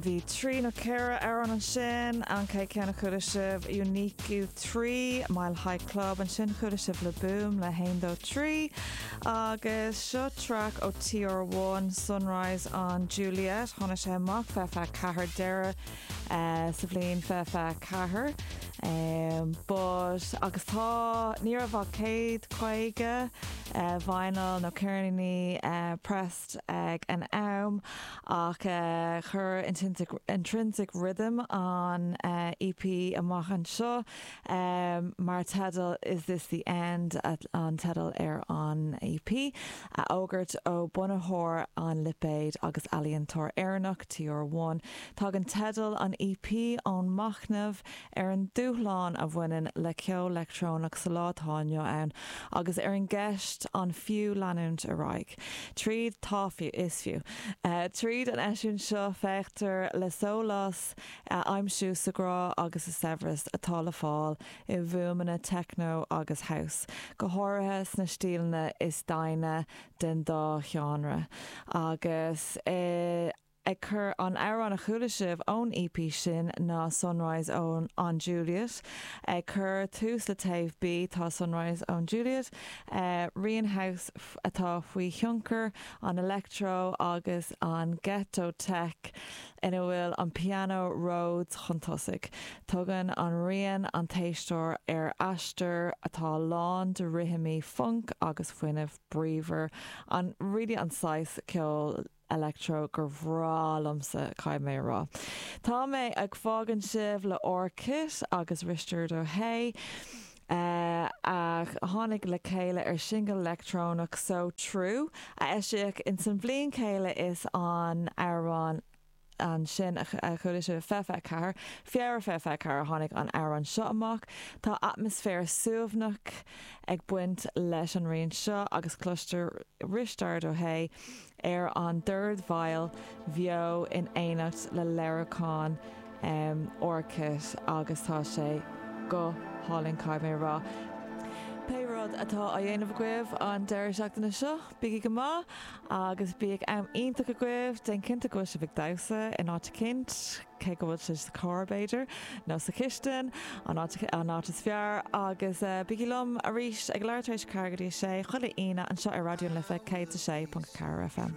Bhí trí nó ceithre amhrán ansin, an chéad ceann a chuala sibh Unique 3, Mile High Club, ansin chuala sibh Le Boom le haon dó trí, agus seo traic ó TR One, Sunrise on Juliet, tháinig sé amach fiche fiche ceathair deireadh sa bhliain fiche fiche ceathair, but agus tá, ní raibh ach céad caoga vinyl nó ceirníní press. pressed ag an am ach chuir Intrinsic Rhythm an EP amach anseo mar teideal Is This The End? an teideal ar an EP, a fhógairt ó bunaitheoir an lipéid agus ealaíontóir Éireannach, TR One. Tagann teideal an EP ón machnamh ar an dúshlán a bhaineann le ceol leictreonach sa lá atá inniu ann agus ar an gceist an fiú leanúint ar aghaidh tríd. Tá fiú, is fiú. Tríd an eisiúint seo féachtar le sólás a aimsiú sa ghrá agus sa saibhreas atá le fáil i bhfuaimeanna techno agus house, go háirithe sna stíleanna is deimhne den dá sheánra, agus i. Ag cur an amhráin a chuala sibh ón EP sin ná Sunrise on an Juliet. Ag cur tús le taobh B tá Sunrise on Juliet, rian house atá faoi thionchar an electro agus an ghetto tech ina bhfuil an pianó Rhodes chun tosaigh. Tugann an rian an t-éisteoir ar aistear atá lán de rithimí func agus fuinneamh bríomhar, really an saghas ceoil electro gur bhreá liomsa, caithfidh mé a rá. Tá mé ag fágaint sibh le R. Kitt agus Risteard Ó hAodha, a tháinig le chéile ar shingil leictreonach So True, a eisíodh in san bhliain chéanna is an amhrán, ansin, a chuala sibh, fiche fiche ceathair, Feabhra fiche fiche ceathair, tháinig an amhrán seo amach. Tá atmaisféar suaimhneach ag baint leis an rian seo agus cloistear Risteard Ó hAodha ar an dordveidhil bheo in éineacht le léiriúchán R. Kitt agus tá sé go hálainn, caithfidh mé a rá. Pé rud atá á dhéanamh agaibh an deireadh seachtaine seo, Bígí go maith agus bíodh am iontach agaibh. Déan cinnte go bhfuil sibh ag damhsa in áit eicínt, cé go bhfuil sibh sa charr b'fhéidir, nó sa chistin, an áit, an áit is fearr. Agus bígí liom arís ag a leathuair tar éis a ceathair go dtí a sé, chuile Aoine, anseo ar Raidió na Life 106.4 FM.